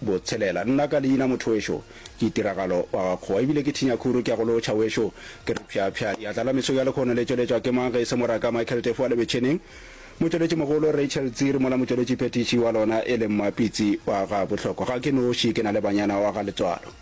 Botshelela. Nna ka leina mothoweso ke Tiragalo wa gakgowa ebile ke Thinyakhuru ke a go lotšha weso ke re phyaphya ya tlala meso ya lekgono le tšweletšwa ke mang ge e se moraka Michael Tefo wa Lebetšheneng motšweletši mogolo Rachel Tsiri mola motšweletši phethiši wa lona e leng Mapitsi wa ga Bohlokwa ga ke noši ke na le banyana wa ga Letswalo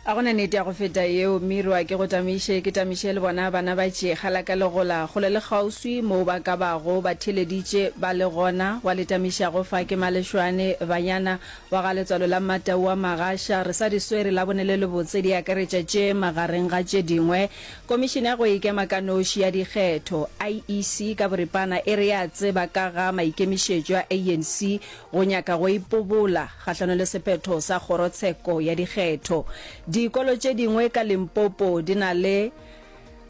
A go na nete ya go feta yeo? Mirwa, ke go tamiše, ke tamiše le bona bana ba tšega la ka le gola, kgole le kgauswi, moo ba ka bago ba theeleditše ba le gona, wa le tamišago fa ke Malešwane, banyana, wa ga letswalo la Mmatau wa Magasha, re sa di swere Labone le lebotse, di akaretša tše, magareng ga tše dingwe, Komišene ya go Ikema ka Noši ya Dikgetho, IEC, ka boripana e re ya tseba ka ga maikemišetšo a ANC, go nyaka go ipobola kgahlano le sephetho sa kgorotsheko ya dikgetho. Dikolo tše dingwe ka Limpopo di na le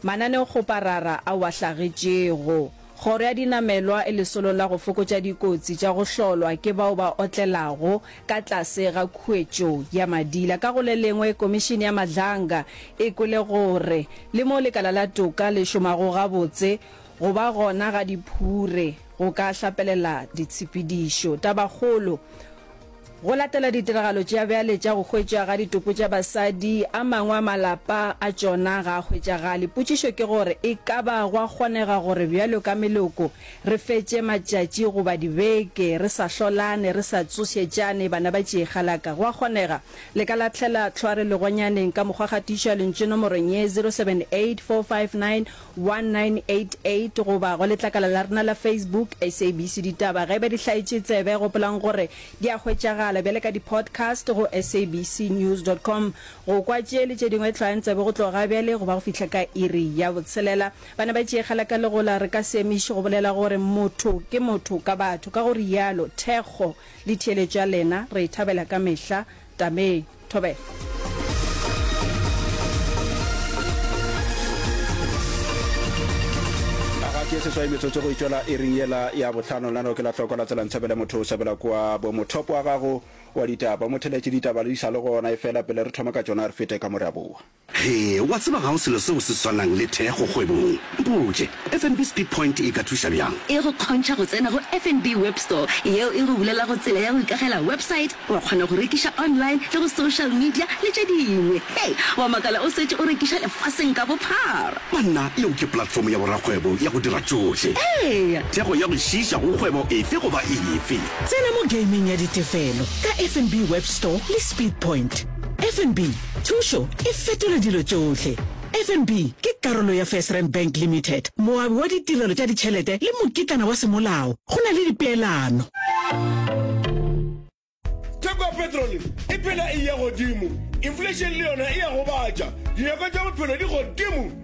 mananeokgoparara ao a hlagetšego. Kgoro ya dinamelwa e lesolo la go fokotša dikotsi tša go hlolwa ke bao ba otlelago ka tlase ga khuetšo ya madila. Ka go le lengwe, Komišene ya Madlanga e kwele gore le mo lekala la toka le šomago gabotse, go ba gona ga diphure, Go ka hlapelela ditshepedišo. Tabakgolo, Go latela ditiragalo tša bjale tša go hwetšwa ga ditopo tša basadi, a mangwe a malapa a tšona ga a hwetšagale. Potšišo ke gore e ka ba gwa kgonega gore bjalo ka meloko re fetše matšatši goba dibeke re sa hlolane, re sa tsošetšane, bana ba tšiegalaka. Gwa kgonega le ka lahlela tlhware legonyaneng ka mokgwa gatiša lentšu nomorong ye, 078 459 1988 goba go letlakala la rena la Facebook, SABC Ditaba. Ge e ba di hlaetše tsebe, gopolang gore di a hwetšagala bjale ka di-podcast go sabcnews.com. Go kwa tše le tše dingwe hlwayang tsebe go tloga bjale go ba go fihla ka iri ya botshelela. Bana ba Tšiegela ka Legola, re ka se emiše go bolela gore motho ke motho ka batho. Ka go rialo, thekgo le theeletšo ya lena re e thabela ka mehla. Tamee. Thobela. ke seswai metsotso go itšwela e ring yela ya botlhano lano ke la tlhoko la tsela ntshabele motho o sabela kwa bomothopo wa gago wa ditaba motheletše ditaba le di sa le gona e fela pele re thoma ka tsona re fete ka mo re a boa He, wa tseba ga go selo seo se swanang le thekgo kgwebong. Mpotše, FNB Speed Point e ka thuša bjang? E go kgontšha go tsena go FNB Web Store, yeo e go bulelago tsela ya go ikagela website, wa kgona go rekiša online le go social media le tše dingwe. Hei, wa makala o setše o rekiša lefaseng ka bophara! Banna, yeo ke platform ya borakgwebo ya go dira tšohle. Eya! Thekgo ya go šiiša go kgwebo efe goba efe. Tsena mo gameng ya ditefelo ka FNB Web Store le Speed Point. FNB Thušo e fetola dilo tšohle. FNB ke karolo ya FirstRand Bank Limited, moabi wa ditirelo tša ditšhelete le mokitlana wa semolao. Go na le dipeelano. Theko ya petrole e phela e eya godimo, inflation le yona e a gobatša, dinyakwa tša bophelo di godimo.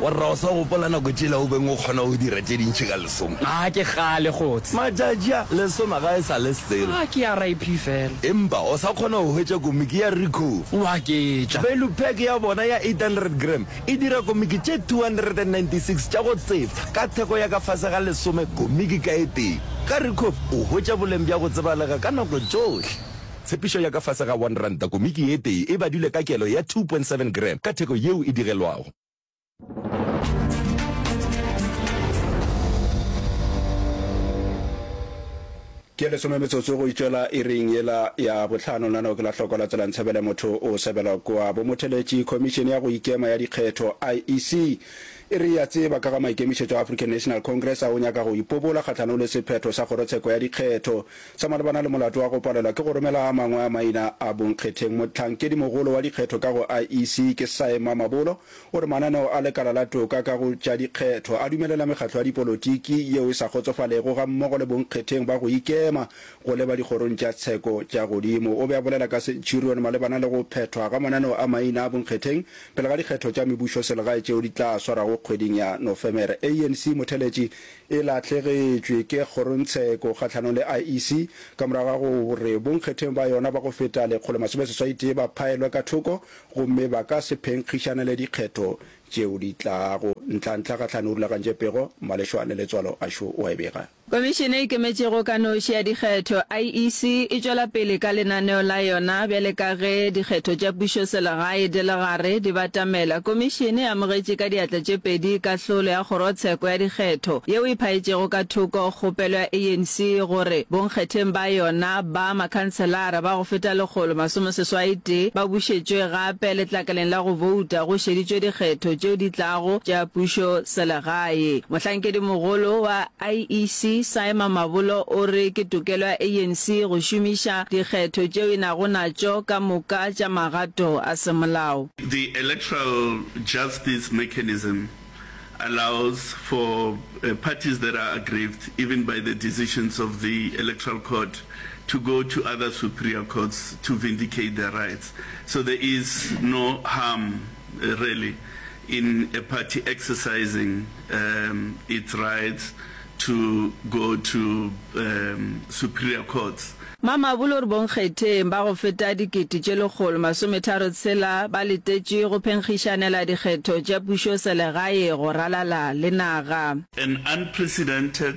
Warra, o sa gopola nako tšela o beng o kgona go dira tše dintši ka lesoma? A ke kgale, Kgots'e. Matšatši a, lesoma ga e sa le selo. A ke ya RIP fela. Empa o sa kgona go hwetša komiki ya Ricoh? Wa ke tša. Value pack ya bona ya 800 gram e dira komiki tše 296 tša go tsefa ka theko ya ka fase ga lesome komiki ka e tee. Ka Ricoh o hwetša boleng bja go tsebalega ka nako tšohle. Tshepišo ya ka fase ga R1, komiki ye tee e badilwe ka kelo ya 2.7 gram ka theko yeo e digelwago. Ke lesome metsotso go itšwela iring yela ya bohlano. Nano ke la hloko la tsela Ntshebele motho o sebela kua bomotheletši. Khomišene ya go ikema ya dikgetho, IEC, e re e a tseba ka ga maikemišetšo a African National Congress a go nyaka go ipobola kgahlanong le sephetho sa kgorotsheko ya dikgetho. Sa malebana le molato wa go palelwa ke go romela a mangwe a maina a bonkgetheng, motlhankedimogolo wa dikgetho ka go IEC ke Cy Mamabolo o re mananeo a lekala la toka ka go tša dikgetho a dumelela mekgatlo ya dipolotiki yeo e sa kgotsofalego gammogo le bonkgetheng ba go ikema go leba dikgorong tša tsheko tša godimo. O be a bolela ka Centurion malebana le go phethwa ga mananeo a maina a bonkgetheng pele ga dikgetho tša mebušoselegae tšeo di tla swarago kgweding ya Nofemere. ANC motheletši e lahlegetšwe ke kgorongtsheko kgahlanong le IEC ka morago ga gore bonkgetheng ba yona ba go feta lekgolo masome seswai tee ba phaelwe ka thoko gomme ba ka se phenkgišanele dikgetho tšeo di tlago. Ntlhantlha gahlano o rulagantše pego, malešwa le letswalo a šo o a e bega. Komišene e Ikemetšego ka Noši ya Dikgetho, IEC, e tšwela pele ka lenaneo la yona bjale ka ge dikgetho tša pušoselegae di le gare. Re di batamela. Komišene e amogetše ka diatla tše pedi kahlolo ya kgorotsheko ya dikgetho yeo e phaetšego ka thoko kgopelo ya ANC gore bonkgetheng ba yona ba makhanselara ba go feta lekgolo masomeseswaitee ba bušetšwe gape letlakaleng la go bouta go šeditšwe dikgetho tšeo di tlago tša pušo selegae. Mohlankedi mogolo wa IEC Simon Mabolo o re ke tokelo ya ANC go šomiša dikgetho tšeo e nago natšo ka moka tša magato a semolao. The electoral justice mechanism allows for parties that are aggrieved even by the decisions of the electoral court to go to other superior courts to vindicate their rights. So there is no harm really in a party exercising um its rights to go to um superior courts. Mamabolo re bonkgetheng ba go feta dikete tše lekgolo masometharo tshela ba letetše go phenkgišanela dikgetho tša pušoselegae go ralala le naga. An unprecedented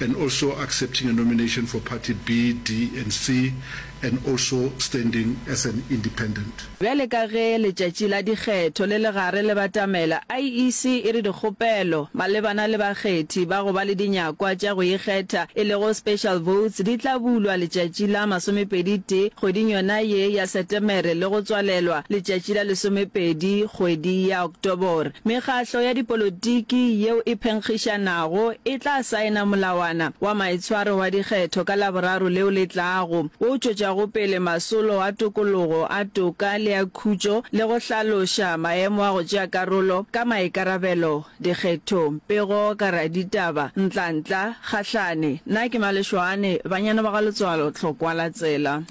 and also accepting a nomination for party B, D and C and also standing as an independent. Bjale ka ge letšatši la dikgetho le le gare le batamela, IEC e re dikgopelo malebana le bakgethi ba go ba le dinyakwa tša go ikgetha e lego special votes di tla bulwa letšatši la masomepedi tee kgweding yona ye ya Setemere le go tswalelwa letšatši la lesomepedi kgwedi ya Tobor, mekgahlo ya dipolotiki yeo e phenkgišanago e tla saena molawana wa maitshwaro wa dikgetho ka Laboraro leo le tlago, wo o tšwetšago pele masolo a tokologo, a toka le a khutšo le go hlaloša maemo a go tšea karolo ka maikarabelo dikgethong. Pego ka raditaba, Ntlantla, Kgahlane, Na ke Malešoane, Banyana ba ga Letswalo, Tlhokwalatsela.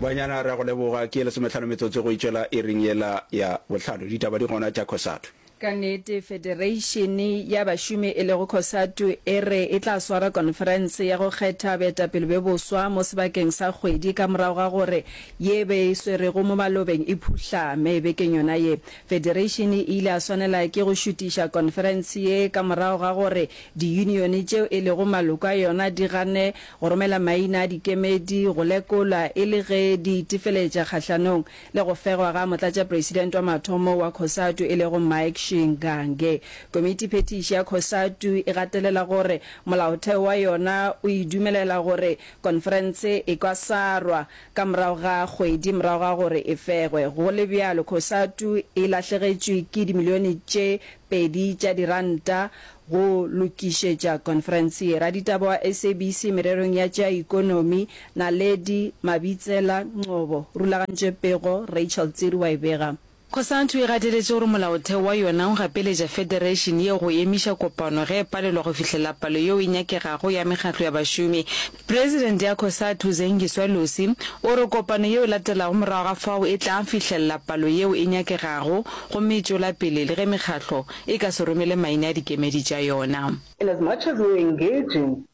banyana re a go leboga ke lesometlhano metsotso go itšwela e reng yela ya bohlano ditaba di gona tša cosatu Ka nnete, federeišene ya bašomi e lego Cosatu e re e tla swara konferense ya go kgetha baetapele be boswa mo sebakeng sa kgwedi ka morago ga gore ye e be e swerego mo malobeng e phuhlame bekeng yona ye. Federation e ile ya swanela ke go šutiša konferense ye ka morago ga gore diyunione tšeo e lego maloko a yona di gane go romela maina a dikemedi go lekolwa e le ge di itefeletša kgahlanong le go fegwa ga motlatšapresidente wa mathomo wa Cosatu e lego Mike Shingange. Komitiphethiši ya Cosatu e gatelela gore molaotheo wa yona o e dumelela gore konferense e ka sarwa Ka morago ga kgwedi morago ga gore e fegwe, go le bjalo Cosatu e lahlegetšwe ke dimilione tše pedi tša diranta go lokišetša konferense ye. Raditaba wa SABC mererong ya tša ikonomi, Naledi Mabitsela Ngcobo, rulagantše pego, Rachel Tsiri wa e bega. Cosatu e gateletše gore molaotheo wa yona o gapeletša federation yeo go emiša kopano ge e palelwa go fihlelela palo yeo e nyakegago ya mekgatlo ya bašomi. President ya Cosatu, Zengiswa Lucy, o re kopano yeo e latelago morago ga fao e tla fihlelela palo yeo e nyakegago gomme e tšwela pele le ge mekgatlo e ka se romele maina a dikemedi tša yona. In as much as we were engaging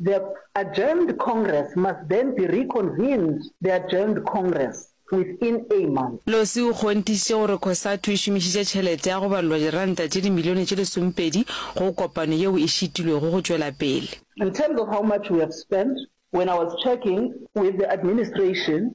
The adjourned Congress must then be reconvened the adjourned Congress within a month. Losi o kgonthišitše gore Cosatu e šomišitše tšhelete ya go balelwa diranta tše dimilione tše lesomepedi go kopano yeo e šitilwego go tšwela pele. In terms of how much we have spent, when I was checking with the administration,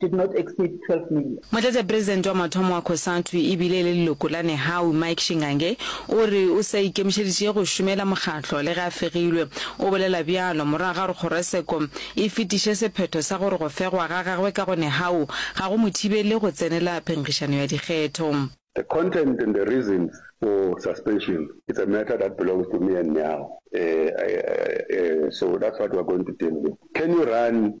did not exceed 12 million. Motlatšapresidente wa mathomo wa Cosatu e bile e le leloko la Nehawu, Mike Shingange, o re o sa ikemišeditše go šomela mokgatlo le ge a fegilwe. O bolela bjalo morago ga gore Kgoroseko e fetiše sephetho sa gore go fegwa ga gagwe ka go Nehawu ga go mo thibele go tsenela phenkgišano ya dikgetho. The content and the reasons for suspension it's a matter that belongs to me and Nehawu, so that's what we're going to deal with. Can you run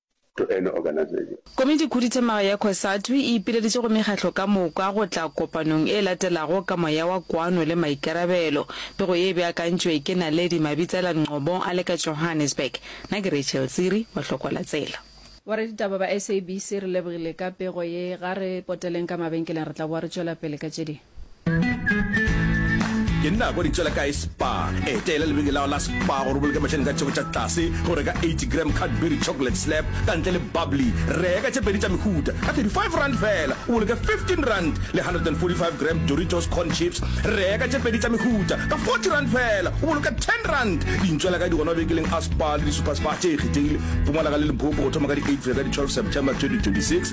to any organization. Komiti-Khuduthamaga ya Cosatu e ipileditše go mekgahlo ka moka go tla kopanong e latelago ka moya wa kwano le maikarabelo. Pego ye e beakantšwe ke Naledi Mabitsela Ngcobo a le ka Johannesburg. Na ke Rachel Tsiri wa Hlokwalatsela. Boraditaba ba SABC re lebogile ka pego ye. Ga re poteleng ka mabenkeleng re tla boa re tšwela pele ka tše dingwe. ke nna kwa ditswela kae spa eteela lebeke lao la spa gore boloke mašani ka tšheko tša tlase go reka 80 gram cadbury chocolate slap ka ntle le bubbly reka tše pedi tša mehuta ka 35 rand fela o boloke 15 rand le 145 gram doritos corn chips reka tše pedi tša mehuta ka 40 rand fela o boloke 10 rand dintšwela kae di gona bekeleng a spa le di-super spa tše e kgethegile pumalaga le limpopo go thoma ka di-8 fela ka di-12 september 2026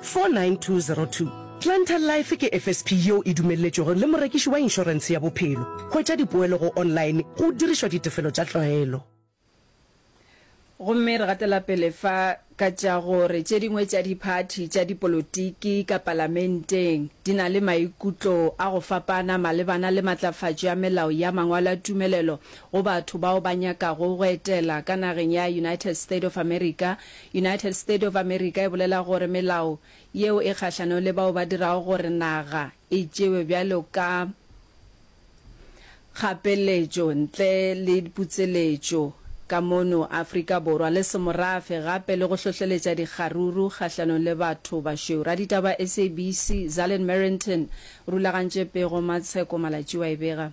49202. Planter Life ke FSP yeo e dumelletšwego le morekiši wa inšorense ya bophelo. Hwetša dipoelo go online go dirišwa ditefelo tša tlwaelo. Gomme re gatela pele fa ka tša gore tše dingwe tša diphathi tša dipolotiki ka Palamenteng di na le maikutlo a go fapana malebana le matlafatšo ya melao ya mangwalo a tumelelo go batho bao ba nyakago go etela ka nageng ya United State of America United State of America e bolela gore melao yeo e kgahlanong le bao ba dirago gore naga e tšewe bjalo ka kgapeletšo ntle le putseletšo ka mono Afrika Borwa le semorafe gape le go hlohleletša dikgaruru kgahlanong le batho bašweu. Raditaba SABC Zallen Merrington rulagantše pego Matsheko Malatšiwa e bega.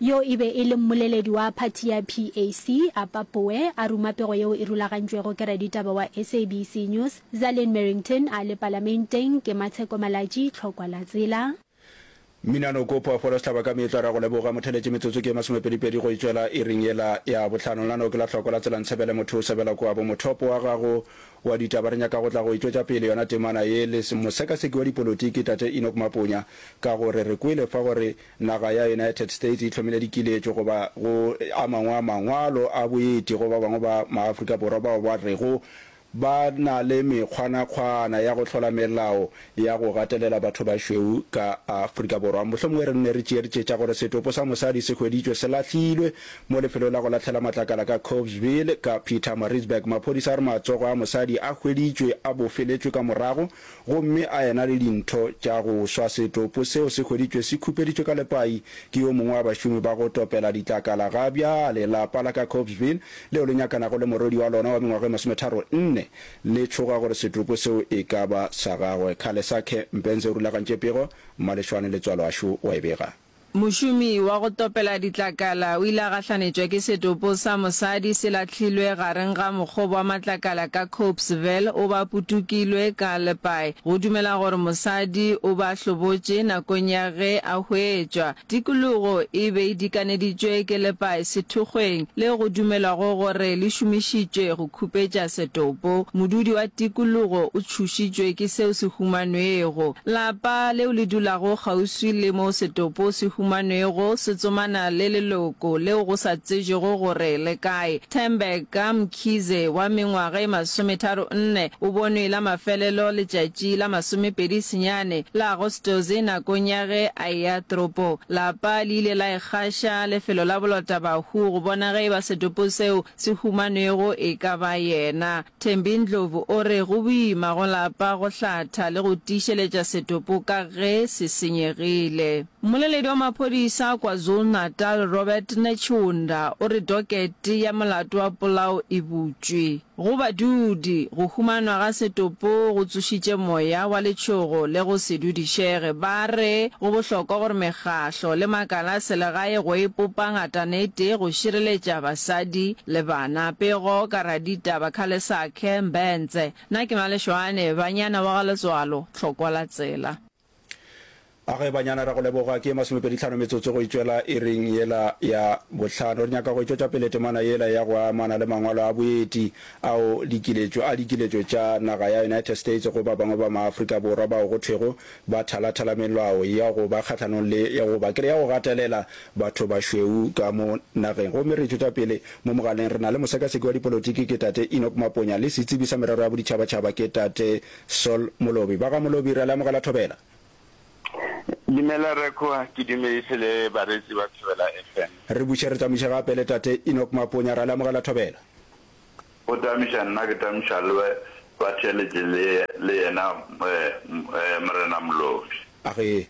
Yo e be e le mmoleledi wa phathi ya PAC, Appa Boe, a ruma pego yeo e rulagantšwego ke raditaba wa SABC News, Zalin Merrington, a le Palamenteng, ke Matsheko Malatji, Tlhokwa la Tsela. Mmina Noko Phoofolo Sehlaba ka meetlo a re a go leboga mo theletše metsotso ke ye masomepedipedi go e tšwela iring yela ya bohlano la no ke la tlhoko la tsela ntshebele motho o sebela kua bo mothopo wa gago wa ditaba re nyaka go tla go e tšwetša pele yona temana ye le mosekaseki wa dipolotiki tate Enoch Maponya ka gore re kwele fa gore Naga ya United States e hlomile dikiletšo go ba go a mangwe a mangwalo a boeti go ba bangwe ba maAfrika Borwa bao ba rego ba na le mekgwanakgwana ya go hlola melao ya go gatelela bathobašweu ka Afrika Borwa. Mohlomongwe re nne re tšeertše tša gore setopo sa mosadi se hweditšwe se lahlilwe mo lefelong la go lahlhela matlakala ka Cobesville ka Pietermaritzburg. Maphodisa a re matsogo a mosadi a hweditšwe a bofeletšwe ka morago Gomme a ena le dintho tša go swa setopo seo se hweditšwe se khupeditšwe ka lepai ke yo mongwe wa bašomi ba go topela ditlakala. Ga bjale lapa la ka Copesville, leo le nyakanago le morwedi wa lona wa mengwaga e masometharo nne, le tšhoga gore setopo seo e ka ba sa gagwe. Khalesakhe Mpenze o rulagantše pego, mmalešwane le tswaloašo wa e bega. Mošomi wa go topela ditlakala o ile a gahlanetšwa ke setopo sa mosadi se lahlilwe gareng ga mokgobo wa matlakala ka Copesville, o ba putukilwe ka lepae. Go dumela gore mosadi o ba hlobotše nakong ya ge a hwetšwa. Tikologo e be e dikaneditšwe ke lepae sethokgweng le go dumelwago gore le šomišitšwe go khupetša setopo. Modudi wa tikologo o tšhošitšwe ke seo se humanwego. Lapa leo le dulago kgauswi le moo setopo se humanwego se tsomana le leloko leo go sa tsejwego gore le kae. Thembeka Mkhize wa mengwaga e masometharo nne o bonwe la mafelelo letšatši la masomepedi senyane la Agostose nakong ya ge a eya toropo. Lapa le ile la ikgaša lefelo la bolotabahu go bona ge e ba setopo seo se humanwego e ka ba yena. Thembi Ndlovu o re go boima go lapa go hlatha le go tiišeletša setopo ka ge se senyegile. Mmoleledi wa maphodisa KwaZulu-Natal Robert Netshiunda o re dokete ya molato wa polao e butšwe. Go badudi, go humanwa ga setopo go tsošitše moya wa letšhogo le go se dudišege. Ba re go bohlokwa gore mekgahlo le makala a selegae go epopa ngatana e tee go šireletša basadi Le bana, Pego, Karadita, Bakhalesakhe, Mbentse, na ke Malešoane, Banyana wa ga Letswalo, Tlhokwa la tsela. A ge banyana ra go leboga. Ke ye masomepedi tlhano metsotso go e tšwela iring yela ya bohlano. Re nyaka go e tšwetša pele temana yela ya go amana le mangwalo a boeti ao dikiletšo a dikiletšo tša naga ya United States go ba bangwe ba maAfrika Borwa bao go thwego ba thalathala melao ya go ba kgahlanong le ya go ba kere ya go gatelela batho bašweu ka mo nageng. Gomme re ithuta pele mo mogaleng, re na le mosekaseki wa dipolotiki, ke Tate Enoch Maponya, le setsebi sa merero ya boditšhabatšhaba, ke Tate Sol Molobi. Ba ga Molobi, re a le amogela Thobela. Dumela Rre Kgowa, ke dumedise le bareetsi ba Thobela FM. Re buše re tsamaiše gape le Tate Enoch Maponya, re a le amogela Thobela. O tamiša nna ke tamiša le we, ba theeletše le, le yena Morena Molobi. A re,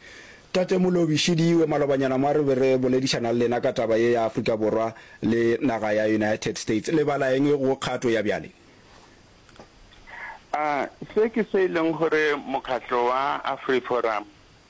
Tate Molobi, šediwe malobanyana mwa re be re boledišana le lena ka taba ye ya Afrika Borwa le naga ya United States. Le bala eng go kgato ya bjale? A se ke se e leng gore Mokgatlo wa AfriForum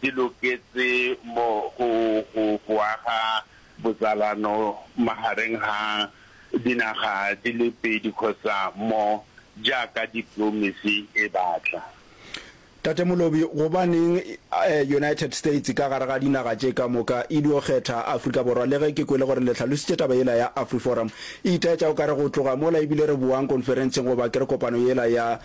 di loketše mo go go go aga botsalano magareng ga dinaga di le pedi kgosa mo jaaka diplomesi e batla. Tate Molobi, gobaneng United States ka gare ga dinaga tše ka moka e dio kgetha Afrika Borwa le ge ke kwele gore le hlalositše taba yela ya Afriforum e itaetša o ka re go tloga mola ebile re boang konferentseng goba ke re kopano yela ya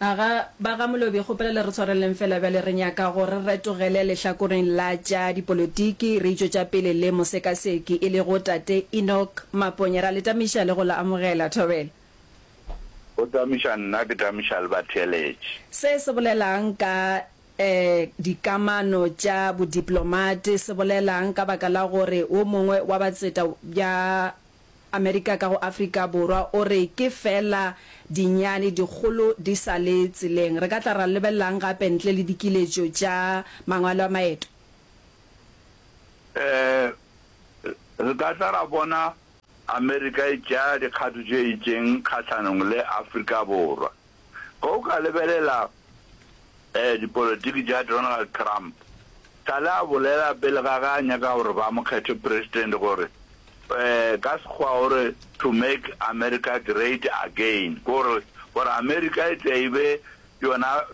A ga, ba ga Molobi, kgopela le re tshwareleng fela bjale, re nyaka go re retogele lehlakoreng la tša dipolotiki, re itšo tša pele le mosekaseki, e lego Tate Enoch Maponya. Ra le tamiša le go la amogela. Thobela. Go tamiša nna, ke tamiša le batheeletši. Se se bolela'ng ka, ee, dikamano tša bodiplomate? Se bolela'ng ka baka la gore wo mongwe wa batseta bja Amerika ka go Afrika Borwa o re ke feela dinyane, dikgolo di sa le tseleng. Re ka tla ra lebelelang gape ntle le dikiletšo tša mangwalo a maeto? Ee, re ka tla ra bona Amerika e tšea dikgato tše itšeng kgahlanong le Afrika Borwa. Ge o ka lebelela dipolotiki tša Donald Trump, sa le a bolela pele ga ge a nyaka gore ba mo kgethe president gore, ka Sekgowa o re, to make America great again, ke gore gore America e tle e be yona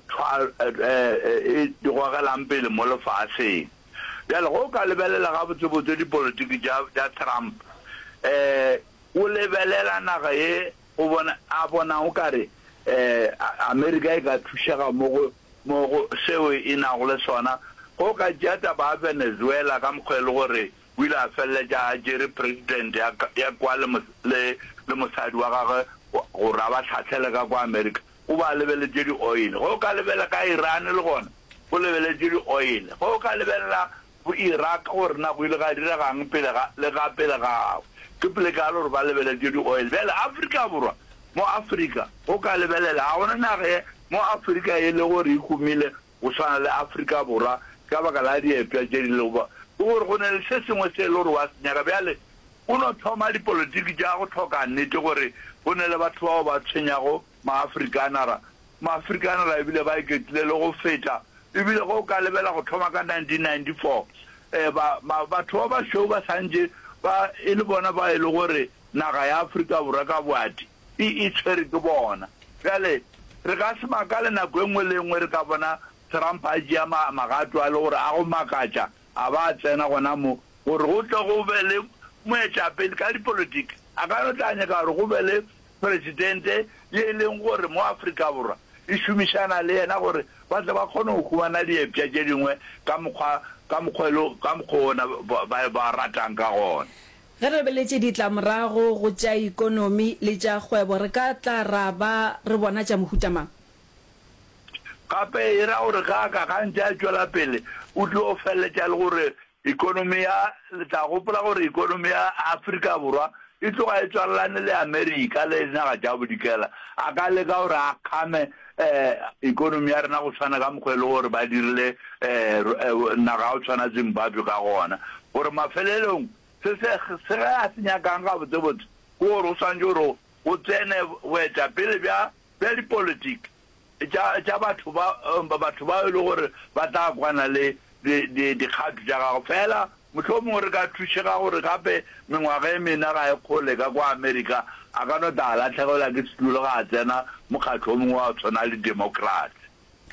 e gogelang pele mo lefaseng. Bjale ge o ka lebelela gabotsebotse dipolotiki tša Trump, o lebelela naga ye O bona, a bona o ka re, ee, Amerika e ka thušega mo go, mo go seo e nago le sona, ge o ka tšea taba ya Venezuela ka mokgwa e le gore o ile a feleletša a tšere President ya, ya kwa le, le, le mosadi wa gagwe gore a ba hlahlele ka kwa Amerika, o ba lebeletše di-oil. Ge o ka lebela ka Iran le gona, o lebeletše di-oil. Ge o ka lebelela go Iraq gore na go ile ga direga'ng pele ga le ga pele ga gagwe. Ke pelekagale gore ba lebeletše di-oil. Bjale Afrika Borwa, mo Afrika, go ka lebelela, ga gona naga ye mo Afrika e le gore e humile go swana le Afrika Borwa ka baka la diepša tše di lego. Ke gore go ne le se sengwe se e le gore wa se nyaka. Bjale o no thoma dipolotiki tša go hloka nnete gore go ne le batho bao ba tshwenyago Maafrikanara, Maafrikanara e bile ba iketlile le go feta, e bile ge o ka lebela go thoma ka 1994, ba, ba, batho ba bašweu ba santše ba e le bona ba e le gore naga ya Afrika Borwa ka boati e, e tshwere ke bona. Bjale, re ka se makale nako e nngwe le e nngwe re ka bona Trump a tšea ma, magato a le gore a go makatša, a ba a tsena gona mo, gore go tle go be le moetapele ka dipolotiki. A ka no tla nyaka gore go be le Presidente ye e leng gore mo Afrika Borwa e šomišana le yena gore ba tle ba kgone go humana diepša tše dingwe ka mokgwa ka mokgwa e le ka mokgwa ona ba ba ratang ka gona. Ge re lebeletše ditlamorago go tša ekonomi le tša kgwebo re ka tla ra ba re bona tša mohuta mang? Gape e ra gore ge a ka gantše a tšwela pele o tlo feleletša e le gore Ekonomi ya, le tla gopola gore ekonomi ya Afrika Borwa e tloga e tswalelane le Amerika le dinaga tša Bodikela. A ka leka gore a kgame eh, ekonomi ya rena go tshwana ka mokgwa e le gore ba dirile eh, eh, naga ya go tshwana Zimbabwe ka gona. Gore mafelelong, se se, se ge a se nyakang gabotsebotse ke gore go swantše gore go tsene boetapele bja, bja dipolitiki. tša, tša batho ba, batho bao e lego gore ba tla kwana le di, di, dikgato tša gago. Feela mohlomongwe re ka thušega gore gape mengwaga e mena ga e kgole ka kwa Amerika, a ka no tla a lahlegelwa ke setulo ge a tsena mokgatlo o mongwe wa go tshwana le Democrats.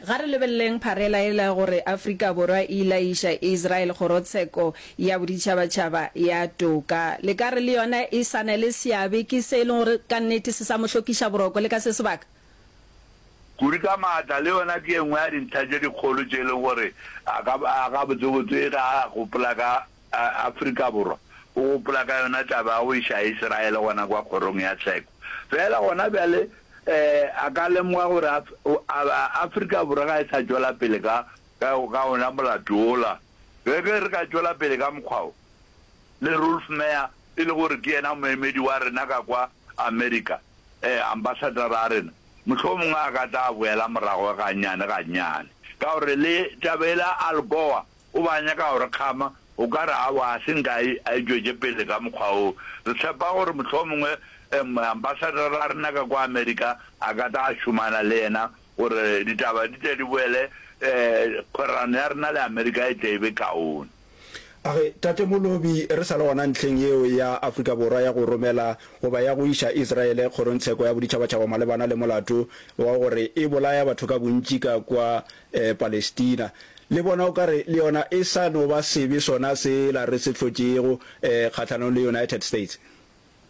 Ga re lebeleleng pharela yela ya gore Afrika Borwa e ile ya iša Israel Kgorotsheko ya Boditšhabatšhaba ya Toka. Le ka re le yona e sa na le seabe? Ke se e lego gore ka nnete se sa mo hlokiša boroko le ka se sebaka? Kudu ka maatla le yona ke e nngwe ya dintlha tše dikgolo tše e lego gore a ka a gabotsebotse e ge a gopola ka Afrika Borwa, o gopola ka yona taba ya go iša Israele gona kwa Kgorong ya Tsheko. Feela gona bjale a ka lemoga gore Afrika Borwa ga e sa tšwela pele ka ka ona molato wola. Ge re ka tšwela pele ka mokgwa wo, le Rolf Meyer e le gore ke yena moemedi wa rena ka kwa Amerika, ee, ambasadara a rena, mohlomongwe a ka tla boela morago gannyane-gannyane. Ka gore le taba yela ya Al Gore, o be a nyaka go re kgama, o ka re, Aowa, ga se nka a e, a e tšwetše pele ka mokgwa woo. Re tshepa gore mohlomongwe ambasadara a rena ka kwa Amerika a ka tla šomana le yena gore ditaba di tle di boele, ee, kgwerano ya rena le Amerika e tle e be kaone. A re, Tate Molobi, re sa le gona ntlheng yeo ya Afrika Borwa ya go romela goba ya go iša Israele kgorongtsheko ya boditšhabatšhaba malebana le molato wa gore e bolaya batho ka bontši ka kwa Palestina, le bona o ka re le yona e sa no ba sebe sona sela re se hlotšego kgahlanong le United States.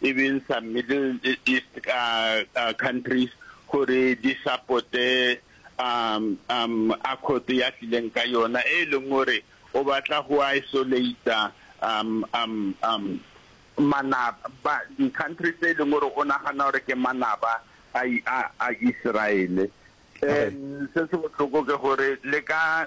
e beng sa Middle East countries gore di supporte accord ya tlileng ka yona e leng gore o batla go isolate manaba, di-country tse e leng gore o nagana gore ke manaba a Israele. Se se botlhoko ke gore le ka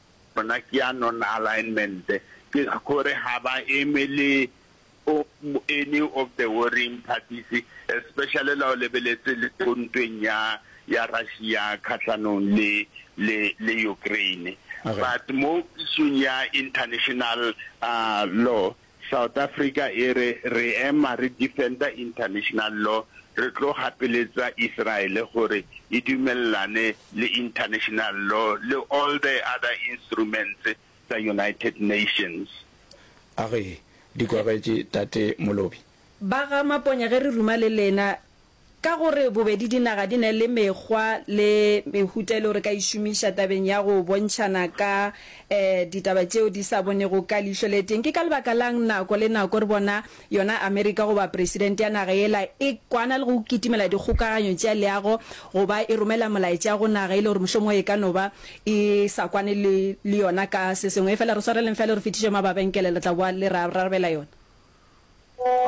Gona ke ya non-alignment, ke gore ga ba eme le any of the warring parties, especially la o lebeletse le ko ntweng ya ya Russia kgahlanong le le le Ukraine. But mo issue-ng ya international law, South Africa e re, Re ema re defender international law, re tlo gapeletsa Israel gore e dumelelane le international law le all the other instruments tsa United Nations. A re, Di kwagetše, Tate Molobi. Ba ga Maponya ge re ruma le lena. Ka gore bobedi dinaga di na le mekgwa le mehuta e lego re ka e šomiša tabeng ya go bontšhana ka ditaba tšeo di sa bonego ka leihlo le tee, ke ka lebaka la'ng nako le nako re bona yona Amerika goba presidente ya naga yela e kwana le go kitimela dikgokaganyo tša leago go ba e romela molaetša go naga e le gore mohlomongwe e ka no ba e sa kwane le yona ka se sengwe? Efela re swareleng fela re fetiše mababenkele, le tla boa le re arabela yona.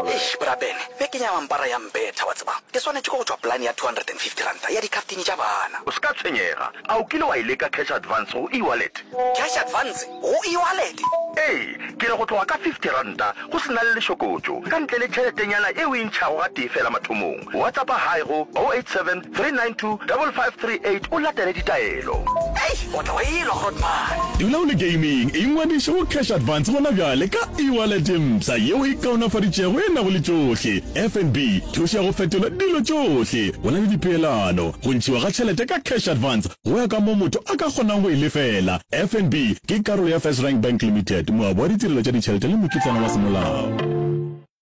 Eish bra Ben, beke ya mampara ya mbetha wa tseba. Ke swanetše ke go tšwa polane ya R250 ya dikhaftini tša bana. O se ka tshwenyega. A o kile wa e leka cash advance go e-wallet? Cash advance go e-wallet? Ee, ke re go tloga ka R50 go se na le lešokotšo, ka ntle le tšheletenyana e o e ntšhago gatee feela mathomong. Whatsappa hi go 087 392 5538 o latele ditaelo. Hei! O tla wa e-lwa, Grootman! Dula o le gaming, ingwadiše go Cash Advance gona bjale ka e-wallet mpsha yeo e kaonafaditšego e nago le tšohle, FNB, thušo ya go fetola dilo tšohle, go na le dipeelano, go ntšhiwa ga tšhelete ka Cash Advance go ya ka moo motho a ka kgonang go e lefela. FNB ke karolo ya FirstRand Bank Limited, moabi wa ditirelo tša ditšhelete le mokitlana wa semolao.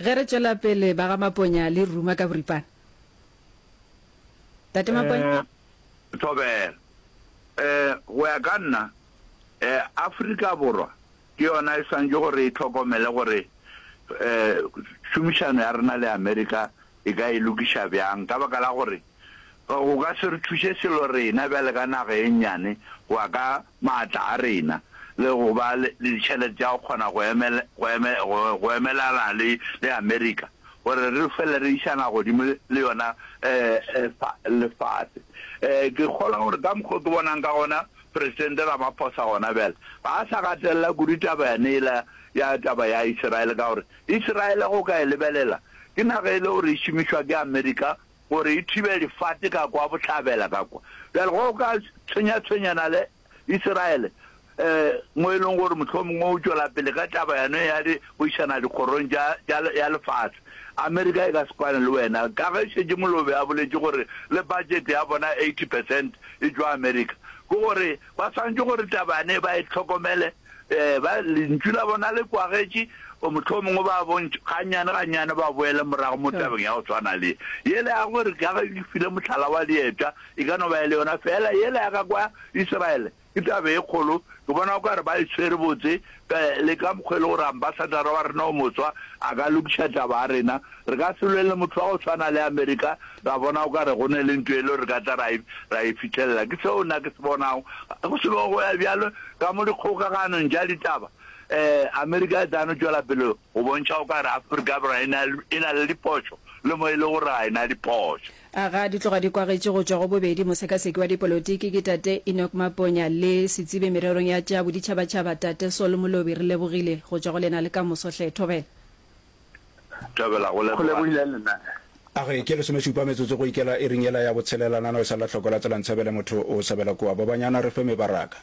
Ge re tšwela pele, ba ga Maponya le ruma ka boripana. Tate Maponya? Eh, Thobela. Eh, go ya ka nna, eh, Afrika Borwa ke yona e swantše gore e hlokomele gore, eh, tšhomišano ya rena le Amerika e ka e lokiša bjang, ka baka la gore go ka se re thuše selo rena bjale ka naga ye nnyane go ya ka maatla a rena le go ba le ditšhelete tša go kgona go emela, go eme, go, go emelana le, le Amerika, gore re fele re išana godimo le, le yona eh, eh, fa, lefase. Eh, ke kgolwa gore ka mokgwa o ke bonang ka gona Presidente Ramaphosa gona bjale ga a sa gatelela kudu taba yane ela ya taba ya Iseraele, ka gore Iseraele go ka e lebelela ke naga e le gore e šomišwa ke Amerika gore e thibe lefate ka kwa bohlabela ka kwa. Bjale go ka tshwenyatshwenyana le Isiraele, mo e lego gore mohlomongwe o tšwela pele ka taba yone ya di go išana dikgorong tša, tša, ya lefase. Amerika e ka se kwane le wena, ka ge šetše Molobe a boletše gore le budget ya bona 80 percent e tšwa Amerika. Ke gore ba swanetše gore taba yane ba e hlokomele. Ee, ba, Lentšu la bona le kwagetše, o mohlomongwe ba bontšha, gannyane gannyane ba boele morago mo tabeng ya go tshwana le ye. Yela ya gore, ka ge ke file mohlala wa diepša, e ka no ba e le yona feela yela ya ka kwa Israele. Ke taba e kgolo. Ke bona o ka re ba e tshwere botse, ka, le ka mokgwa e le gore Ambassadara wa rena o moswa a ka lokiša taba ya rena, Re ka se lwele motho wa go swana le Amerika ra bona o ka re go ne le nto yelo re ka tla ra e, ra e fithelela. Ke seo nna ke se bonago. Ga go selo go ya bjalo ka mo dikgokaganong tša ditaba. Ee, Amerika e tla no tšwela pele go bontšha o ka re Afrika Borwa e na, e na le diphošo le mo e le gore ga e na diphošo. A ga di tloga di kwagetše go tšwa go bobedi mosekaseki wa dipolotiki ke Tate Enoch Maponya le setsibi mererong ya tša boditšhabatšhaba Tate Sol Molobi. Re lebogile go tšwa go lena le kamoso hle. Thobela. Thobela, go leboga nna. A ge ke lesomešupa metsotso go ikela iring yela ya botshelela, nano e sa lla hloko la tsela ntshabele motho o sabela kua. Bobanyana re fe mebaraka.